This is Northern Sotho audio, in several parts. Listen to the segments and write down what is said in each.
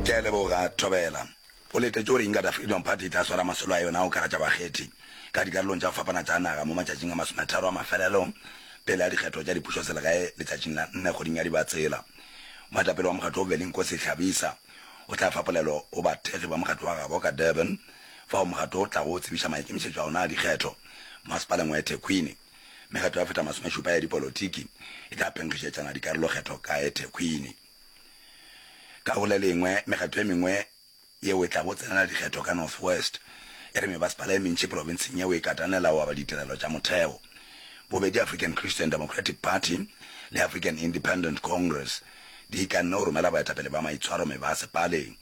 Ke a leboga, Thobela. O letetše gore Inkatha Freedom Party e tla swara masolo a yona a go karatša bakgethi ka dikarolong tša go fapana tša naga mo matšatšing a masometharo a mafelelo pele ga dikgetho tša dipušoselegae letšatšing la nne kgweding ya Dibatsela. Moetapele wa mokgatlo wo Velinkosi Hlabisa o tla fa polelo go bathekgi ba mokgatlo wa gabo ka Durban fao mokgatlo o tlago tsebiša maikemišetšo a ona a dikgetho masepaleng wa eThekwini. Mekgatlo ya feta masomešupa ya dipolotiki e tla phenkgišetšana dikarolokgetho ka Ethekwini. Ka go le lengwe, mekgatlo e mengwe yeo e tlago tsenela dikgetho ka North West e re mebasepala e mentši profenseng yeo e katanela go aba ditirelo tša motheo. Bobedi African Christian Democratic Party le African Independent Congress di ikanne go romela baetapele ba maitshwaro mebasepaleng.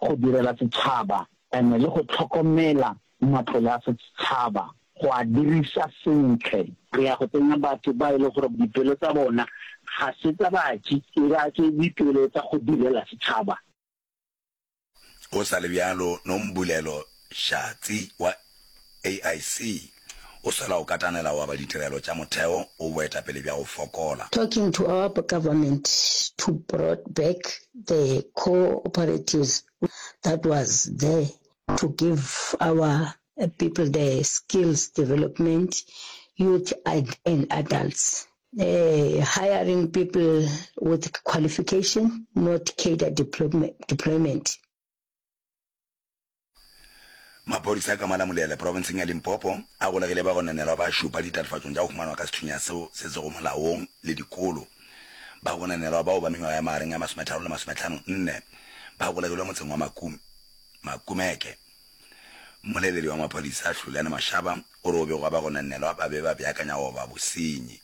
go direla setšhaba and le go tlhokomela matlole a setšhaba go a dirisa sentle. Re ya go tsenya batho ba e le gore dipelo tsa bona ga se tsa batši e ba ke dipelo tsa go direla setšhaba. Go sa le bjalo, Nombulelo Shatsi wa AIC, o swela go katanela wa ba ditirelo tša motheo o boetapele bja go fokola. Talking to our government to brought back the cooperatives that was there to give our people the skills development, youth and adults. Hiring people with qualification not cadre deployment. Maphodisa a ka Malamulele, profenseng ya Limpopo, a golegile bagononelwa ba šupa ditatofatšong tša go humanwa ka sethunya seo se sego molaong le dikolo. Bagononelwa bao ba mengwaga ya magareng a masometharo le masometlhano nne ba golegilwe motseng wa Makum, Makumeke. Mmoleledi wa maphodisa, Hlulene Mashaba, o re go begwa bagononelwa ba be ba beakanya go oba bosenyi.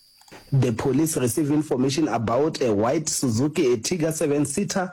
The police received information about a white Suzuki Ertiga seven-seater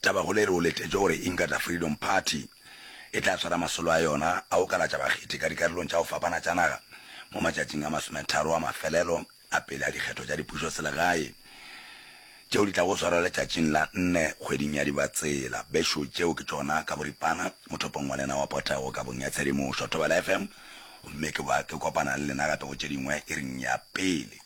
Tabakgolo e re o letetše gore Inkatha Freedom Party e tla swara masolo a yona a go kalatša bakgethi ka dikarolong tša go fapana tša naga mo matšatšing a masometharo a mafelelo a pele a dikgetho tša dipušoselegae tšeo di tlago swarwa letšatšing la nne kgweding ya Dibatsela. Bešo tšeo ke tšona ka boripana mothopong wa lena wa potego kabong ya tshedimošo Thobela FM gomme ke ba ke kopana le lena gape go tše dingwe iring ya pele.